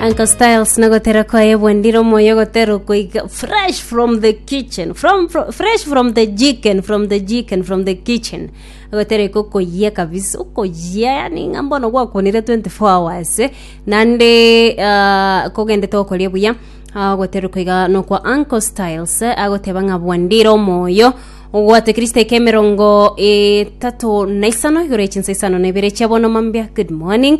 Uncle Styles nagotera kwaye bwendire omoyo gotera okoiga fresh from the kitchen from, fro- fresh from the chicken from the chicken from the kitchen agotera iko koyia kabisa okoyia yani ng'a mbono gwakonire 24 hours eh, nande uh, kogendete okoria buya agotera koiga nokwa Uncle Styles eh, agoteba ng'a bwendire omoyo ogwate kristo eke emerongo etatu na isano igoro echinsa isano na ibere chiabono mambia good morning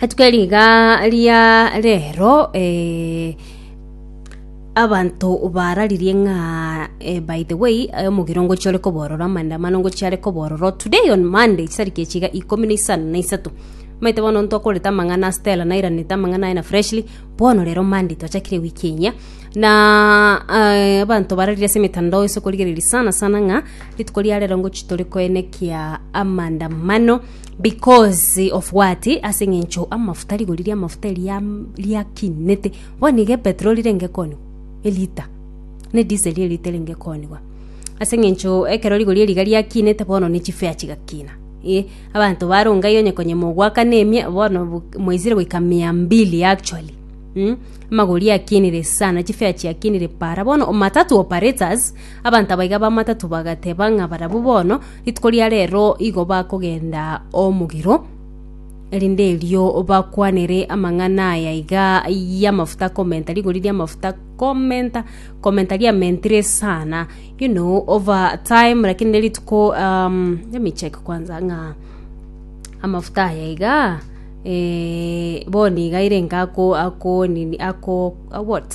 rituko eri iga ria rero eh, abanto bararirie ng'a eh, by the way eh, omogiro ngochia ore koborora amaandamano ngochia are kobororo today on monday chisariki echi iga ikomi na isano na isato omanyete bono ntokorete amang'ana a stella nairanete amang'ana aye na freshly bono rero monday twachakire ewiki eye na eh, abanto bararirie ase emetandao ase okorigereria sana sana ng'a rituko ria rero ngochia tore koenekia amaandamano Because of what? Ase eng'encho amafuta, rigori ri'amafuta eri riam- riakinete. Bono iga epetroli renge kooniwa, elita, na ediseli elita erenge kooniwa. Ase eng'encho ekero rigori eri iga riakinete bono ne chifea chigakina, eh, abanto baronga iga onye konya mogoakana emia, bono bu- mwaisire goika mia mbili actually mm, amagori akinire sana, chifea chiakinire paara. Bono matatu operators, abanto aba iga ba matatu bagateba ng'a barabwo bono. Rituko ria reero igo bakogenda omogiro, erinde erio bakwanere amang'ana aya iga y'amafuta komenta, rigori ri'amafuta komenta, komenta riamentire sana, you know over time lakini ne rituko um, let me check kwanza ng'a amafuta aya iga eh, bono iga ere inga ako ako nini ako a what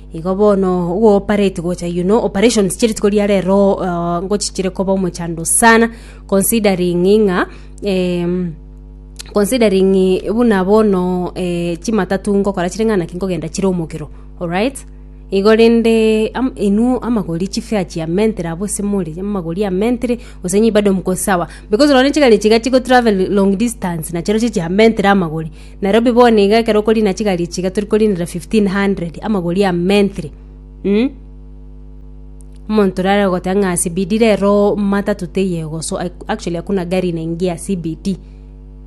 Igo bono ogopareti gocha you know operations chia rituko ria rero uh, ngochichire koba omochando sana considering ng'a em, considering buna bono eh, chimatatu ngokora chire ng'a naki nkogenda chire omokero alright igo rende am, inwe amagori chifea chia mentere abo ase more amagori a mentere gose nyii bado mko sawa because nonye chigari chiga chigotravel long distance nachireo chichia mentere amagori Nairobi bono iga ekero okorina chigari echi iga tori korinera fifteen hundred amagori a menthree um, omonto rare ogoteba ng'a CBD rero matatu teiyo egoso ac- actually hakuna gari inaingia CBD.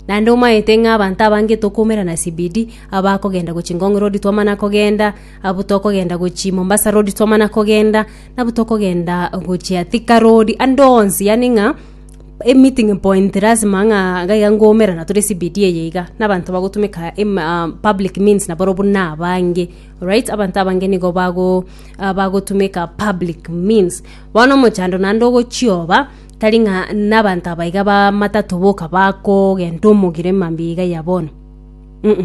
Naende omaete ng'a abanto abange tokoumera na CBD, abakogenda gochia Ngong road twamana kogenda, abwo tokogenda gochia Mombasa road twamana kogenda, nabwo tokogenda gochia Thika road, ande onsi yaani ng'a. Emeeting point lasima ng'a iga iga ngoumera na tore CBD eye iga, na abanto bagotumeka em- ah, public means naboro buna abange, alright, abanto abange nigo bago ah, bagotumeka public means. Bono omochando naende ogochioba, tari ng'a na abanto aba iga ba matatu boka bakogenda omogire mambia iga ya bono, mh,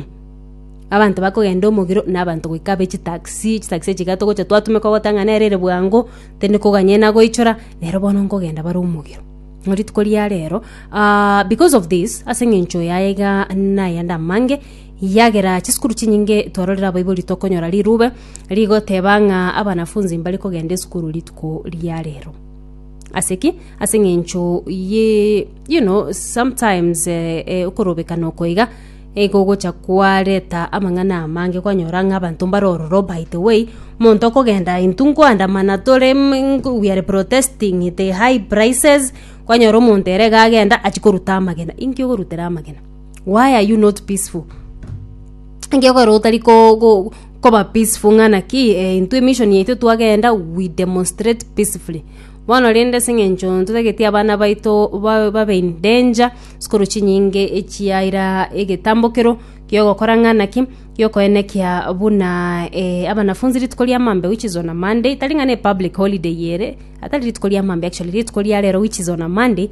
abanto bakogenda omogiro na abanto goika abe chitaxi, chitaxi echi iga togocha twatumeka ogoteba ng'a nere ere bwango. Tindi koganyena goichora, nero bono nkogenda bare omogero. Ng'a rituko ria rero, ah, because of this, ase eng'encho yaye iga nayende amange, yagera chisukuru chinyinge twarorire abaibori tokonyora rirube rigoteba ng'a abanafunzi mbare kogenda esukuru rituko ria rero. Ase ki? Ase eng'encho ye you know, sometimes eh, eh, okorobekana oko iga, Nigo ogocha kwareta amang'ana amange kwanyora ng'a abanto mbare ororo by the way omonto okogenda intwe nkoandamana tore we are protesting the high prices kwanyora omonto ere iga agenda achia koruta amagena inki okorutera amagena why are you not peaceful? Inki okorora otari ko- ko- koba peaceful ng'a naki intwe emission yaito twagenda we demonstrate peacefully. Bono rende ase engencho ntotageti abana baito ba- babe in danger, sikuru chinyinge echiaira egetambokero gi'ogokora ng'a naki giokoenekia buna eh, abanafunzi rituko ria Mambia which is on a Monday, tari ng'a ne public holiday eye ere, atari rituko ria Mambia actually, rituko ria rero which is on a Monday,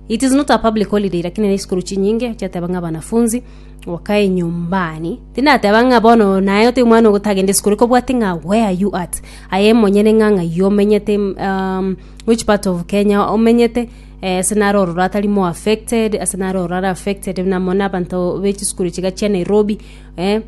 it is not a public holiday lakini ne sikuru chinyinge chiateba ng'a abanafunzi, Okae nyumbani. Tindateba ng'a bono naye ote omwana ogotagende isiko, reka obwate ng'a where are you at? Aye monyene ng'a ng'ai omenyete um, which part of Kenya omenyete eh, ase nare ororo atari more affected, ase nare ororo are affected buna mono abanto bechisukuru chiga chia Nairobi eh,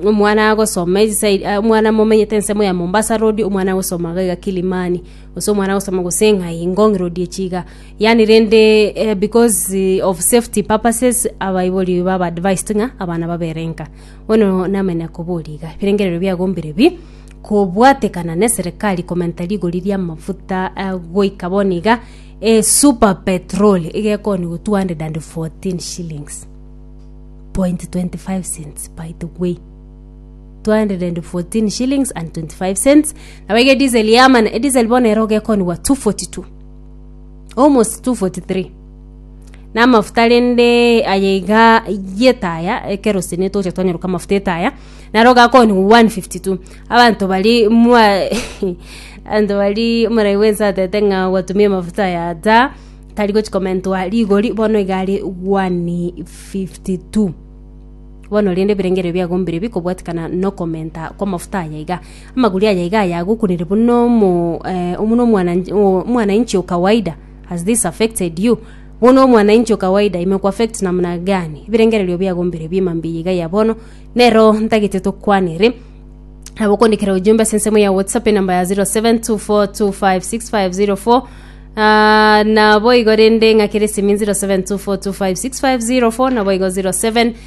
omwana agosoma eyi side ah, omwana momenyete ensemo ya Mombasa road, omwana agosoma iga iga Kilimani, gose omwana agosoma gose ng'ai Ngong road echi iga. Yaani rende eh, because of safety purposes abaibori baba advised ng'a abana babere nka bono namanya koboria iga ebirengererio biagombire bi kobwatekana ne serikali komenta rigori ria amafuta eh, goika bono iga eh, super petrol igekoni go 214 shillings point 25 cents by the way 214 shillings and 25 cents nabo iga edisel yamana edisel bono ero gekonigwa 242 Almost 243 na amafuta rende aye iga yetaya ekero sene toche twanyeruka amafuta etaya naro gakoni 152 abanto bari mwa abanto bari omorai bwense atete ng'a gwatumia amafuta aya ta tari gochi komentwa rigori bono iga are 152 bono rende ebirengererio biago mbirebi kobwatikana nokomenta kw'amafuta aya iga Amaguri aya iga ayagokunire buna omo eh, buna omwana- o- omwanainchi o kawaida has this affected you buna omwanainchi o kawaida imekuaffect namna gani ebirengererio biago mbere biema mbiya iga ya bono nero ntagete tokwanere nabo okondikera ujumbe ase ensemo ya whatsapp enamba ya 0724256504 Ah, nabo igo rende ng'akere esimi 0724256504 nabo igo 07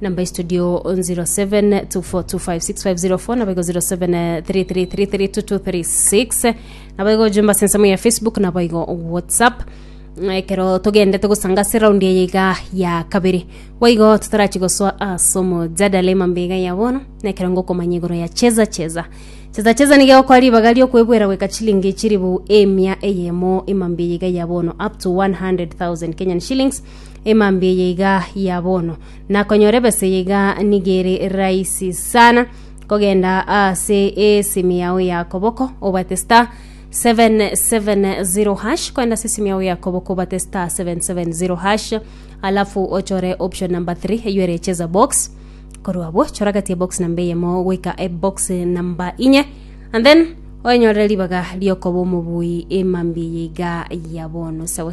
Number studio 0724256504 nabo igo 0733332236 nabo igo jumba sensemo ya Facebook nabo igo WhatsApp ekero togendete gosanga ase raundi eye iga ya kabere boigo totarachi gosoa ase omojadala emambe iga ya bono na ekero ngokomanya igoro ya cheza cheza cheza cheza niga egokora ribaga riokwebwera goika chilingi chiribu emia eyemo emambe eye iga ya bono up to 100,000 Kenyan shillings emambia eye iga ya bono, na konyora ebesa eye iga nigo ere rahisi sana kogenda ase esimi yao ya koboko obate star 770 hash kwenda ase esimi yao ya koboko obate star 770 hash alafu ochore option number 3 eyo ere cheza box korwa abwo chora gati ya box namba eyemo goika ebox namba inye and then oenyorere ribaga riokoba omobui emambia eye iga ya bono sawa sawa